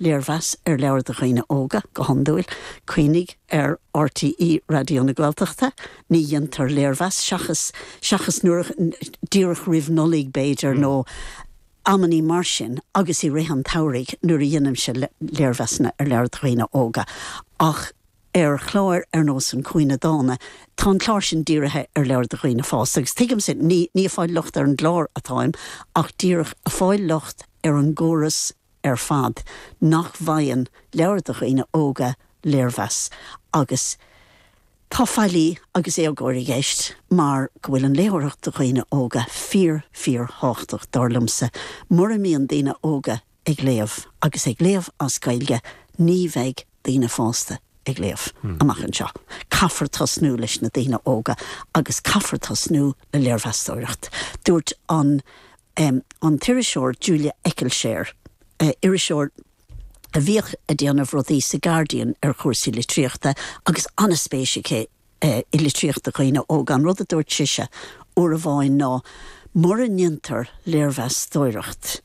Léirmheas ar leabhar do dhaoine óga, go hiondúil. Cuimhnigh ar RTÉ Raidió na Gaeltachta, ní dhéantar léirmheas, seachas, seachas nuair a, díreach roimh Nollaig b'fhéidir nó amannaí mar sin agus i rith an tsamhraidh nuair a dheinimse léirmheasanna ar leabhair do dhaoine óga ach ar chláir ar nós An Cúinne Dána tá an clár sin dírithe ar leabhair do dhaoine fásta agus tuigimse ní, ní ag fáil locht ar an gclár atáim ach díreach ag fáil locht ar an gcóras a ar fad nach bhfaigheann leabhair do dhaoine óga léirmheas agus tá faillí agus éagóir i gceist mar go bhfuil an léitheoireacht do dhaoine óga fíor, fíor thábhachtach, dar liomsa. Mura mbíonn daoine óga ag léamh agus ag léamh as Gaeilge ní bheidh daoine fásta ag léamh amach anseo. Caithfear tosnú leis na daoine óga agus caithfear tosnú le léirmheastóireacht. Dúirt an. an t-iriseoir Julia Eccleshare, iriseoir a bhíodh ag déanamh rudaí sa Guardian ar chúrsaí litríochta agus an-spéis aici i litríocht do dhaoine óga. An rud a dúirt sise uair amháin ná mura ndéantar léirmheastóireacht,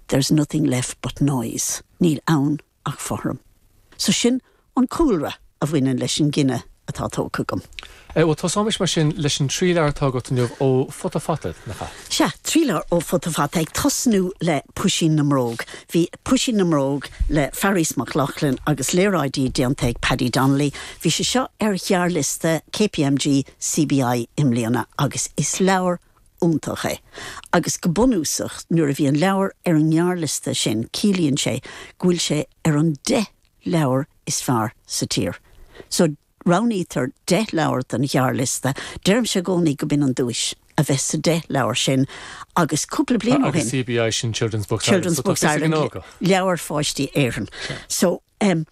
there's nothing left but noise, níl ann ach fothram. So sin an cúlra a bhaineann leis an gcinneadh atá tógtha agam. Sea, bhuel, tosaímis mar sin leis an trí leabhar atá agat inniu ó Futa Fata, nach ea? Sea, trí leabhar ó Futa Fata, ag tosnú le Puisín na mBróg. Bhí Puisín na mBróg le Fearghas Mac Lochlainn agus léaráidí déanta ag Paddy Donnelly, bhí sé seo ar ghearrliosta KPMG CBI i mbliana agus is leabhar, iontach é agus go bunúsach nuair a bhí an leabhar ar an ngearrliosta sin ciallaíonn sé go bhfuil sé ar an deich leabhar is fearr sa tír. So roghnaítear deich leabhar don ghearrliosta, deirimse i gcónaí go b'in an duais, a bheith sa deich leabhar sin agus cúpla bliain ó shin, CBI sin Children's Books Ireland, Children's so tá Books fios ag an Ireland, óg. Leabhair Pháistí Éireann. So, em,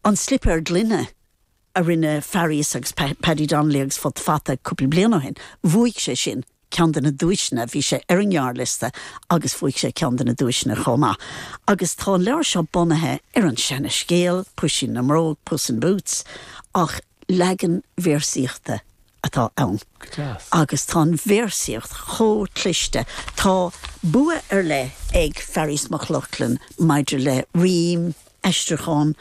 An Slipéar Gloine a rinne Fearghas agus Paddy Donnelly agus Futa Fata cúpla bliain ó shin, bhuaigh sé sin ceann de na duaiseanna, bhí sé ar an ngearrliosta agus bhuaigh sé ceann de na duaiseanna chomh maith. Agus tá an leabhar seo bunaithe ar an seana scéal, Puisín na mBróg, Puss in Boots, ach leagan véarsaíochta atá ann. Go deas. Agus tá an véarsaíocht chomh cliste. Tá bua ar leith ag Fearghas Mac Lochlainn maidir le rím, aistriúchán,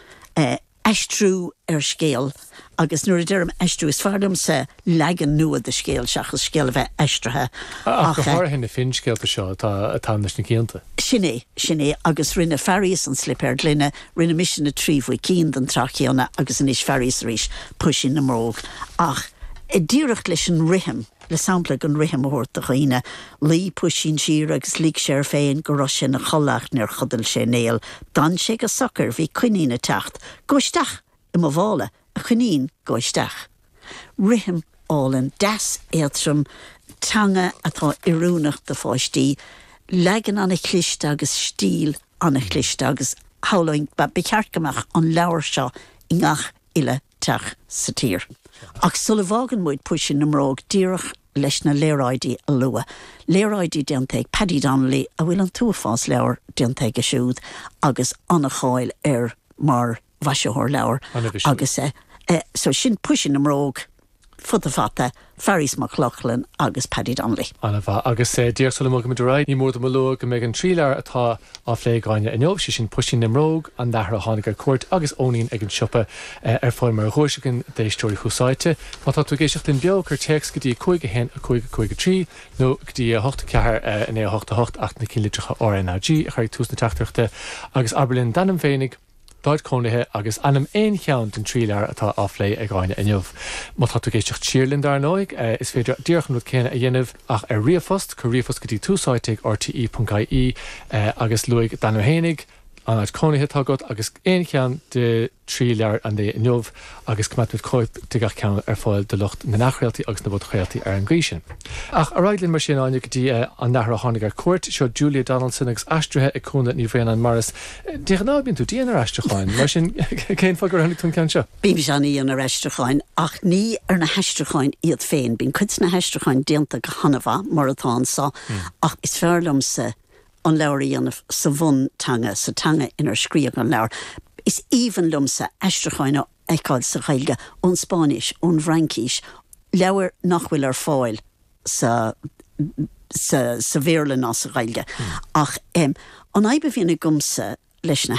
aistriú ar scéal agus nuair a deirim aistriú is fearr liomsa leagan nua de scéal seachas scéal a bheith aistrithe ach go háirithe na finscéalta seo atá ann leis na cianta. Sin é, sin é agus rinne Fearghas An Slipéar Gloine, rinne mise Na Trí Mhuicín den tsraith chéanna agus anois Fearghas arís, Puisín na mBróg ach díreach leis an rithim, le sampla den rithim a thabhairt do dhaoine. Luigh puisín siar agus lig sé air féin go raibh sé ina chodladh ach níor chodail sé néal. D'fhan sé go socair. Bhí coinín ag teacht. Gabh isteach i mo mhála, a choinín, gabh isteach. Rithim álainn, deas, éadrom, teanga atá oiriúnach do pháistí, leagan an-chliste agus stíl an-chliste agus shamhlóinn, ba cheart go mbeadh an leabhar seo i ngach uile teach sa tír. Ach sula bhfágann muid Puisín na mBróg díreach leis na léaráidí a lua, léaráidí déanta ag Paddy Donnelly a bhfuil an t-uafás leabhar déanta aige siúd agus an-cháil air mar mhaisitheoir leabhar agus eh, so sin Puisín na mBróg. Futa Fata, Fearghas Mac Lochlainn agus Paddy Donnelly. An-mhaith. Agus díreach sula mbogfaimid ar aghaidh, ní mór dom a lua go mbeidh an trí leabhar atá á phlé ag Áine inniu, sé sin Puisín na mBróg, An Nathair a Tháinig ar Cuairt agus Eoinín ag an Siopa, ar fáil mar dhuais againn d'éisteoirí Thús Áite. Má tá tú ag éisteacht linn beo, cuir téacs go dtí 5 1 5 5 3 nó go dtí 8 4 9 8 8, ach na cinnlitreacha RNAG a chur ag tús na teachtaireachta, agus abair linn d'ainm féinig. d'áit chónaithe agus ainm aon cheann den trí leabhar atá á phlé ag Áine inniu. Má tá tú ag éisteacht siar linn, dar ndóigh, is féidir díreach an rud céanna a dhéanamh ach ar ríomhphost, cuir ríomhphost go dtí túsáite ag rte.ie agus luaigh d'ainm fhéinig, an áit chónaithe atá agat agus aon cheann de thrí leabhar an lae inniu. agus coimeádfaidh muid cóip de gach ceann ar fáil do lucht na n-athchraoltaí agus na bpodchraoltaí ar an gcaoi sin. Ach ar aghaidh linn mar sin, a Áine, go dtí an nathair a tháinig ar cuairt. Seo Julia Donaldson agus aistrithe ag Cúnla Ní Bhraonáin Morris. De ghnáth bíonn tú dian ar aistriúcháin, mar sin cén fáth gur roghnaigh tú an ceann seo? Bímse an-dhian ar aistriúcháin, ach ní ar na haistriúcháin iad féin. Bíonn cuid de na haistriúcháin déanta go han-mhaith, mar atá anso, ach is fearr liomsa an leabhar a dhéanamh sa bhunteanga, sa teanga inar scríodh an leabhar. Is aoibhinn liomsa aistriúcháin a fheiceáil sa Ghaeilge ón Spáinnis, ón bhFraincis, leabhair nach bhfuil ar fáil sa Bhéarla ná sa Ghaeilge. Ach an fhadhb a bhíonn agamsa leis na.